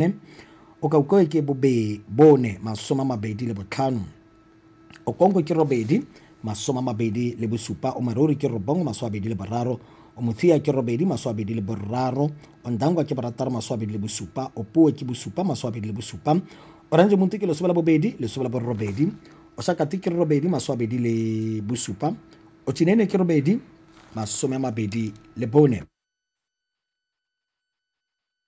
bone okaukoi ke bobe bone masoma mabedi le botlhano okonko ke robedi masoma mabedi le bosupa omarori ke robongwe maso abedi le boraro omothiya ke robedi maso abedi le boraro ondangwa ke borataro maso abedi le bosupa opuwe ke bosupa maso abedi le bosupa orange monti ke lesome la bobedi lesome la borobedi osakati ke robedi maso abedi le bosupa ochinene ke robedi masome a mabedi le bone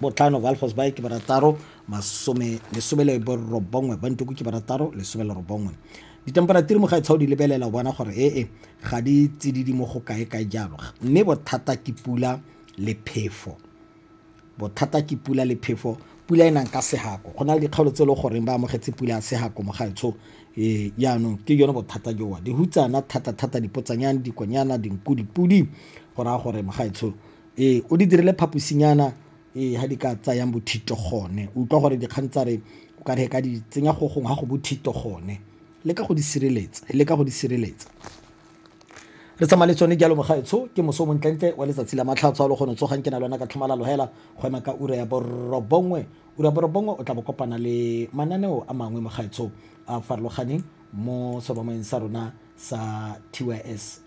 botlhano Valfors Bay ke barataro masome lesome le borobongwe Bantuku ke barataro lesome le robongwe ditemperature mo ga etshao di lebelela o bona gore ee ga di tsididi mo go kae kae jalo mme bothata ke pula le phefo bothata ke pula le phefo pula e nang ka segako go na le dikgaolo tse e le goreng ba amogetse pula ya segako mo gaetsho ee jaanong ke yone bothata jowa dihutsana thata-thata dipotsanyane dikonyana dinku dipudi go raya gore mo gaetsho ee o di dirile phaposinyana ee ha di ka tsayang bothito gone o utlwa gore dikgang tsa re o ka re ka di tsenya go gongwe ga go bothito gone le ka go di sireletsa le ka go di sireletsa re tsamaya le tsone jalo mogaetsho ke moso montlentle wa letsatsi la matlhatso a le gone tsogang ke na le yona ka tlhomalalo hela go ema ka ura ya borobongwe ura ya borobongwe o tla bo kopana le mananeo a mangwe mogaetsho a farologaneng mo seromaeng sa rona sa tys